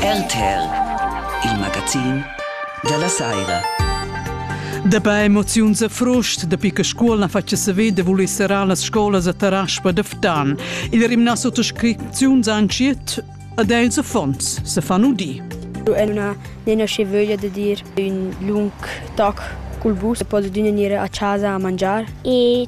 RTL, il magazin della saira. Dabei emoziuns a frust, da picca scuol na faccia saver da voler serrar las scolas a Taraspa da Ftan. Il rimna sottoscriziuns anciet ad els affons se fanno di. El una nena che voglia de dir un lung toc col bus, posso dunne dire a casa a mangiar. E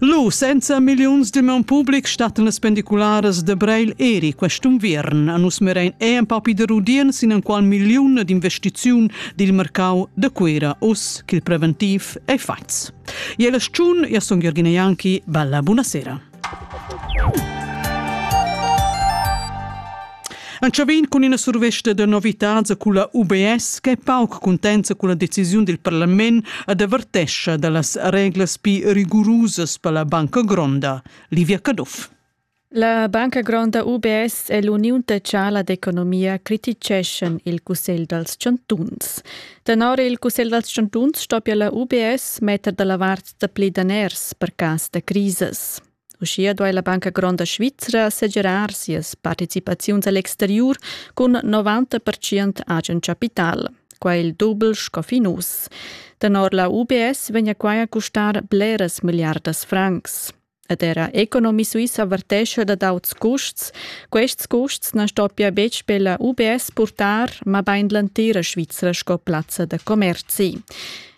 Lu senza milliuns de man public stattan las pendicularas de Breil eri quest'unviern a nus merein ei en papi de rudien sin enqual milliun d'investiziun dil mercau de Cuera us ch'il preventiv ei fatgs. Ie la sciun, io son Jürgen Janki, bella buonasera. Entschavin cun ina survesta da novitads e culla UBS che è pauc cuntenta con la decisiun del Parlament ad avertescha dallas reglas più rigorosas per la Banca Gronda. Livia Caduff. La Banca Gronda UBS e l'Uniun Tecciala d'Economia criticeschan il Cussegl dals Chantuns. Tenor il Cussegl dals Chantuns stoppia la UBS metter dalla vart dapli daners per cas da crisas. Uschia duai la Banca Gronda Svizra segirar sias participaziuns a l'exteriur cun 90% agen capital. Quai il dubel sco fin uss. Tenor la UBS vegna quai a custar bleras milliardas francs. ed era economist Suisse avvertesce da d'auts custs. Quests custs non stoppia betg per la UBS portar, ma bain l'entira Svizzera sco plazza da commerzi.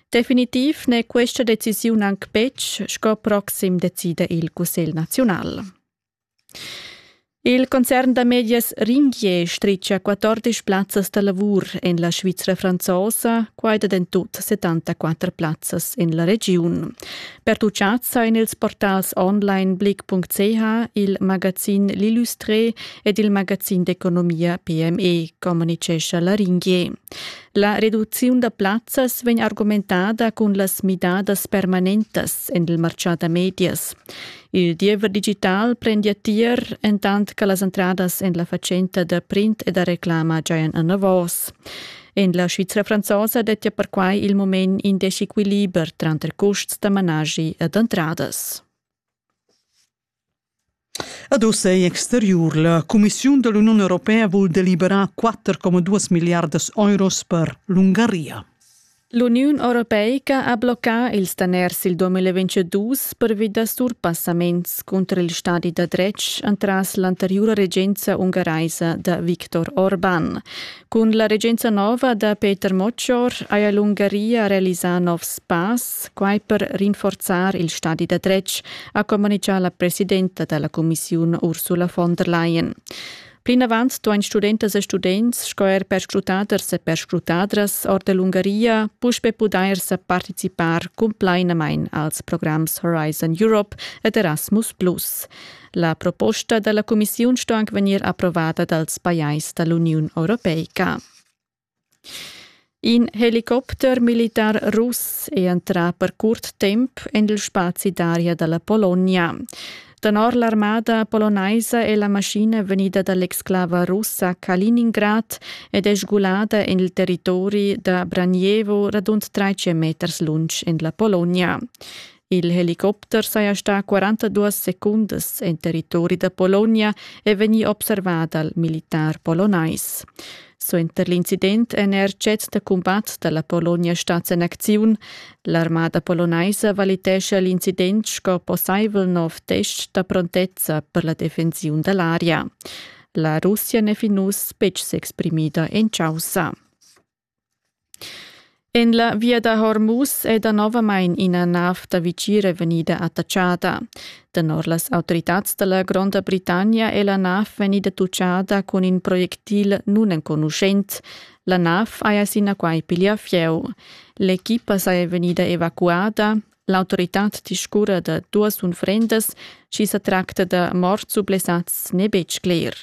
Definitiv n'è questa decisiun anc betg sco proxim decida il Cussegl nazional. Il concern da medias Ringier stritga 14 plazzas da lavur en la Svizra franzosa, quai da en tut 74 plazzas en la regiun. Per tutgazza en ils portals onlineblick.ch, il magazin L'Illustré ed il magazin d'economia PME, communicescha la Ringier. La reduziun da plazzas vegn argumentada cun las midadas permanentas en il martgà da medias. Il diever digital prendia tier entant che las entradas en la fatschenta da print e da reclama giajan anavos. En la Svizra franzosa dettia perquai il moment in desequiliber tranter custs da managi ed entradas. Ad ossa è exteriur. La Commissiun dell'Unione Europea vul deliberar 4,2 miliardas euros per l'Ungaria. L'Uniun europeica ha bloccà ils daners il 2022 pervi da surpassaments cunter il stadi da dretg entras l'anteriura regenza ungaraisa da Viktor Orban. Cun la regenza nova da Peter Moccior haja l'Ungaria realisà novs pass, quai per rinforzar il stadi da dretg, ha communitgà la presidenta da la cumissiun Ursula von der Leyen. Plinavant duain studentas e students sco er perscrutaders e perscrutadras or da l'Ungaria puspè pudair sa participar cumplainamain als programs Horizon Europe ed Erasmus+. La proposta da la cumissiun sto anc vegnir approvada dals pajais da l'Uniun europeica. In helicopter militar russ è entrà per curt temp en il spazi d'aria da la Pologna. Tenor l'armada polonaisa è la maschina vegnida da l'exclava russa Kaliningrad ed è sgulada en il territori da Branijevo radund 300 meters lunsch en la Pologna. Il helicopter saja stà 42 secundas en territori da Polonia e vegnì observà dal militar polonais. Suenter l'incident en er cets da cumbat da la Polonia stats en acziun. L'armada polonaisa valitescha l'incident sco possaivel nov test da prontezza per la defensiun da l'aria. La Russia n'è fin uss betg s'exprimida en chaussa. En la via da Hormuz è danovamain ina nav da vitgira vegnida attatschada. Tenor las autoritads da la Gronda Britannia è la nav vegnida tutgada cun in projectil nunenconuschent. La nav haja sinaquai piglià fieu. L'equipa saja vegnida evacuada, L'autoritad discurra da duas unfrendas, sch'i sa tracta da morts u blessads n'è betg cler.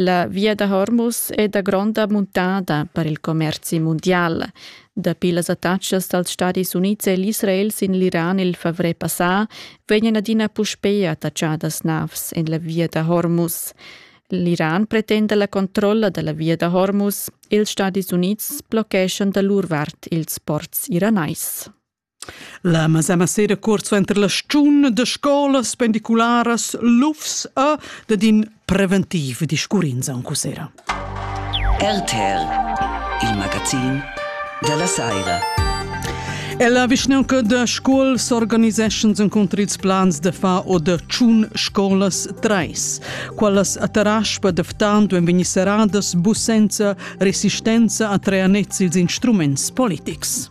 La via da Hormuz è da gronda muntada per il commerzi mundial. Dapi las attacas dals Stadis Unids e l'Israel sin l'Iran il favrer passà vegnan adina puspè attaccadas navs en la via da Hormuz. L'Iran pretenda la controlla da la via da Hormuz. Ils Stadis Unids bloccheschan da lur vart ils ports iranais. La masema sera cuort suenter la stgiun da scolas pendicularas Lufs ha dat in preventiv discurrins aunc sera. RTR, il magazin dalla Saira. Ella vischnaunca da Scuol s'organiseschan encunter ils plans da far o da tschun scolas treis. Quellas a Taraspa da Ftanto ein vegni serradas bu senza resistenza a treanets ils instruments politics.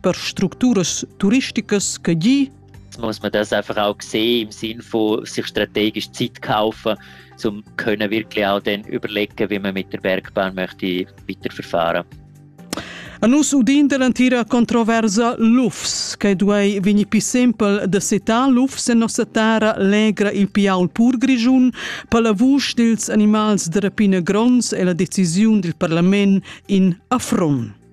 per structuras turisticas che gi muss man das einfach auch sehen im Sinn von sich strategisch Zeit kaufen, um können wirklich auch dann überlegen, wie man mit der Bergbahn möchte weiterverfahren. A nus udin dell'antira controversa lufs, che duei vegni più simpel da setar lufs en nossa terra legra il piaul pur grigiun per la vusch dils animals de rapina grons e la decisiun dil parlament in affront.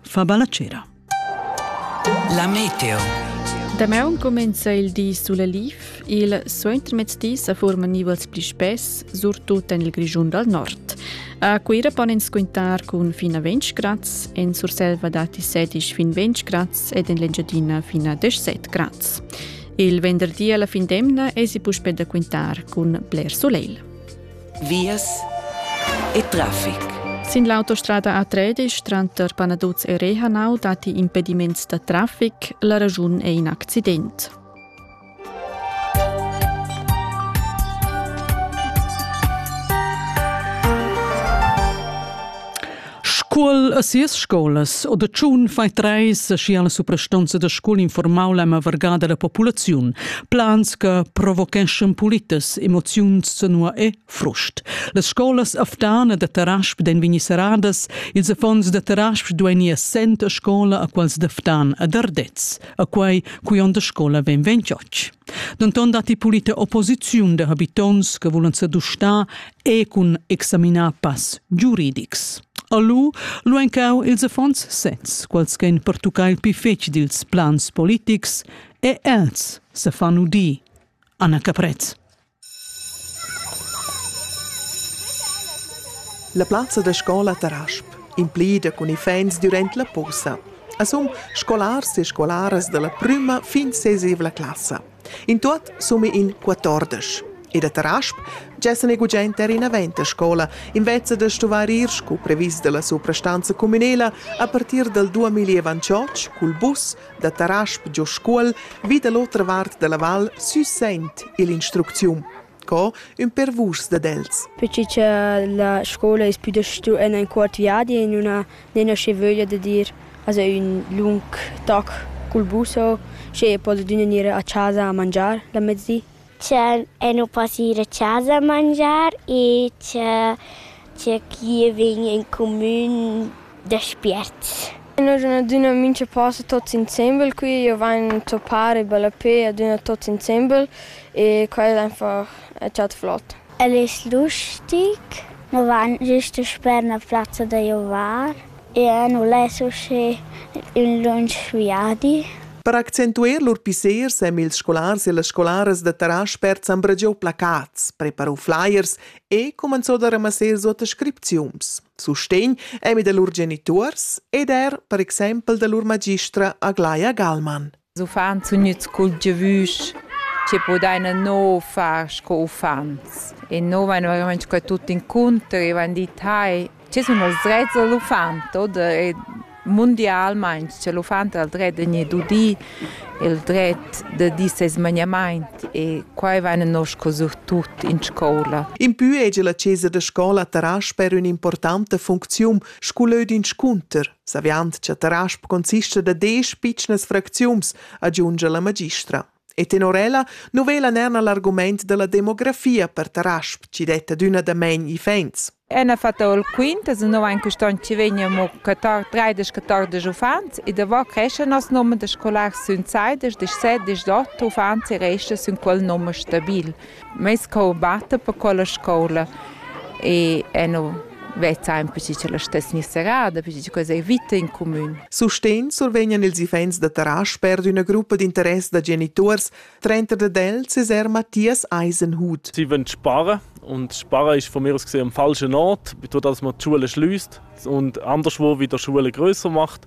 fa balla cera. La meteo. Damaun comenza il di sulla Lif. Il suentermezdi sa forman nivels pli spess, surtut en il Grischun dal nord. A Cuira pon ins quintar cun fin a 20 grads, en Surselva datti 16 fin 20 grads ed en l'Engiadina fin a 17 grads. Il venderdi alla fin d'emna esi puspè da quintar cun bler soleil. vias e traffic. Sin l'autostrada a Tredisch tranter Panaduz e Rehanau datti impediments da traffic. La raschun è in accident. Scuol e sias scolas o da tschun fai treis schi alla suprastonza da scuol informau la mavarga della populaziun, plans che provocheschan politas emoziuns zanua e frust. Las scolas aftana da Tarasp den vegni seradas, ils affons da Tarasp dueni assent a scola a quals daftan ad Ardez, a quei cui onda scola ven ventioc. Denton datti pulita opposiziun da habitons che vulan sedustar e cun examinar pass giuridics. A lu lu encau ils affons sezs, quals che ein pertuccai il pli fetg dils plans politics, e els se fan udir. Anna Caprez. La plaza da scola Tarasp implida cun iffaints durant la posa. A sun scolars e scolaras dalla prüma fin sesevla classa. In tuot summa in quatordesch. E da Tarasp gessa ne gugent er inavent a scola, invezza da stuvar ir scu previs dalla suprastanza cumünela a partir dal 2028 cul bus da Tarasp giò Scuol vi da l'otra vart dalla val sü Sent ill'instrucziun. Sco ün per vuschs dad els. Perche cha la scoula es pü da stu en ün cuort viadi e nun ha nen aschi vöglia da dir aza ün lung toc cul bus o schi e podedüna gnir a chasa a mangiar la mezdi. Cha e nu po gnir a chasa a mangiar e cha Tgei che vegn en cumin da spiert. Noi sun adüna mincha post tuots insembel qui, io vain zoppar e ballapè adüna tuots insembel e quai al einfach chat flot. El es lustig, nu vain gist sper 'na plazza da giovar e nu less usché ün lunsch viadi. Per accentuer lur pissers èn ils scolars e las scolaras da Taraspert s'han bragià placats, preparà flyers e cumenzò da ramassar suota scripziuns, sustegn emi da lur genituors ed er per exempel da lur magistra Aglaia Gallmann. Uffants sun gnüts cultivüs che podaina no far sco uffants e no vain verament sco tuot incontri, vain dit hai Che sun els drets da l'uffant oder e mundialmaing cha l'uffant ha il dret da gnir dudi, il dret da dir seis magnamaint e quai vaina nosco surtut in scoula. Impü hegia la chesa da scoula Tarasp-er ün'importanta funcziun scu lö d'inscunter. Saviand cha Tarasp consista da desch pitschnas fracziuns, agiungia la magistra. E tenor ella nu vela nerna l'argumaint da la demografia per Tarasp, chi detta adüna damain iffaints. Ena fatta il quint, es no aint quist on chi vegn amo 13-14 uffants e davò creschan nos nomer da scolars sün saidesch, deschset, deschdot uffants e resta sün quel nomer stabil. Meis cour batta per quella scoula e e nu vezza aint perche ch'ella stess gnü serrada, perche che quella es vita in cumün. Sustegn survegnan ils iffaints da Tarasch per üna gruppa d'interess da genituors, trenta dad els es eir Matthias Eisenhut. Sie wollen sparen und sparen ist von mir aus gesehen am falschen Ort, durch das man die Schule schließt und anderswo wieder die Schule größer macht.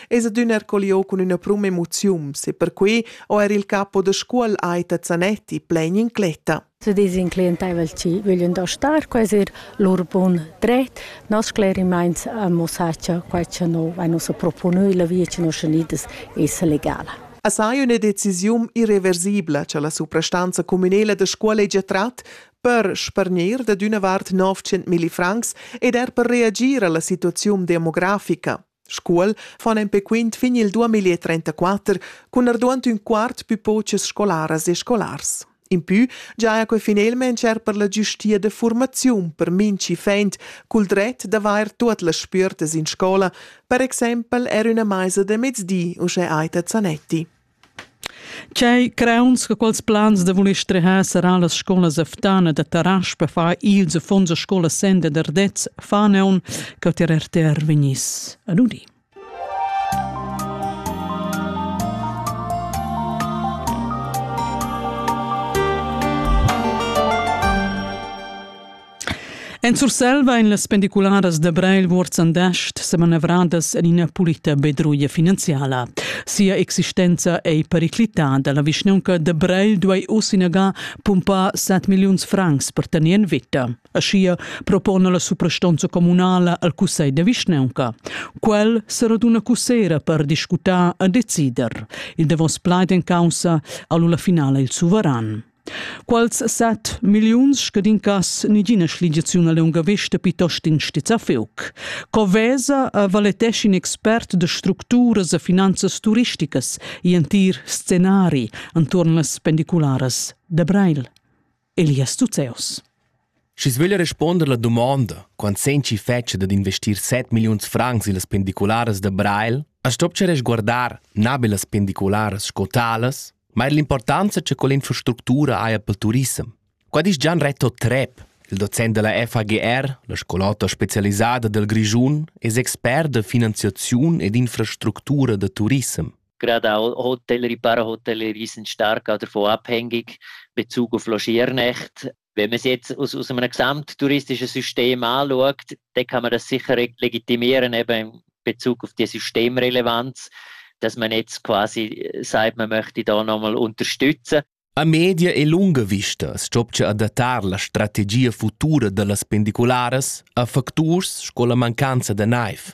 Es adüna er colliò cun üna pruma emoziun, e perquai ho er il capo da scuol Aita Zanetti plain incletta. Se disin clientaivel chi vöglin da star, quais er lur bun dret, nos sclerimaints ammussar cha quai cha no vain ussa proponü illa via chi nos unidas esa legala. A sai üna decisiun irreversibla cha la suprastanza communela da scuola hegia trat per spargnir dad üna vart 900 milli francs ed er per reagir a la situaziun demografica. Scuol fan empè quint fin il 2034 cun arduant ün quart pü pochas scolaras e scolars. Impü giaja que finelmaing er per la giustia da furmaziun per minchi fend cul dret d'avair tuot las spüertas in scola, per exaimpel er üna maisa da mezdi, uschè Aita Zanetti. Tgei crauns che quels plans da voler strehar serrà las scolas a Ftana da Tarasch per far ils affons a scola senda d'Ardez faneon che ter RTR vegnis a nudi. En Surselva ein las pendicularas da Breil Wuorzendascht semanavradas en ina pulita bedruia finanziala. Sia existenza ei periclitada. La vischnaunca da Breil duei uss inaga pumpar set milliuns francs per tener en veta. Aschia propona la suprastonza communala al cussegl da vischnaunca. Quel seraduna cussera per discutar e decider. Il davos plaid en caussa ha lu la finala il suveran. Quals set milliuns scadincas nigina schligiaziun a lunga vesta pitost in stizzafeuc. Co vesa a valetesci in expert de structuras e finanzas turisticas i entir scenari anturn las pendicularas de Breil, Elias Tuzeus. Schi's veglia respuonder la dumonda, quant sen chi fetscha dad investir set milliuns francs illas pendicularas da Breil, as stopcha resguardar na be las pendicularas sco talas, ma eir l'importanza cha quell'infrastructura haja pel turissem. Qua disch Gian Reto Trepp, il docent da la FAGR, la scolota specialisada dal Grischun, es expert da finanziaziun ed infrastructura da turissem. Gerade auch Hotellerie, Parahotellerie sind stark davon abhängig, Bezug auf Logernacht. wenn man es jetzt aus, aus einem gesamttouristischen System anschaut, dann kann man das sicher legitimieren, eben in Bezug auf die Systemrelevanz, dass man jetzt quasi sagt, man möchte da nochmal unterstützen. A media e lunga vista stopcha adattar la strategia futura da las pendicularas a facturs sco la mancanza da naiv.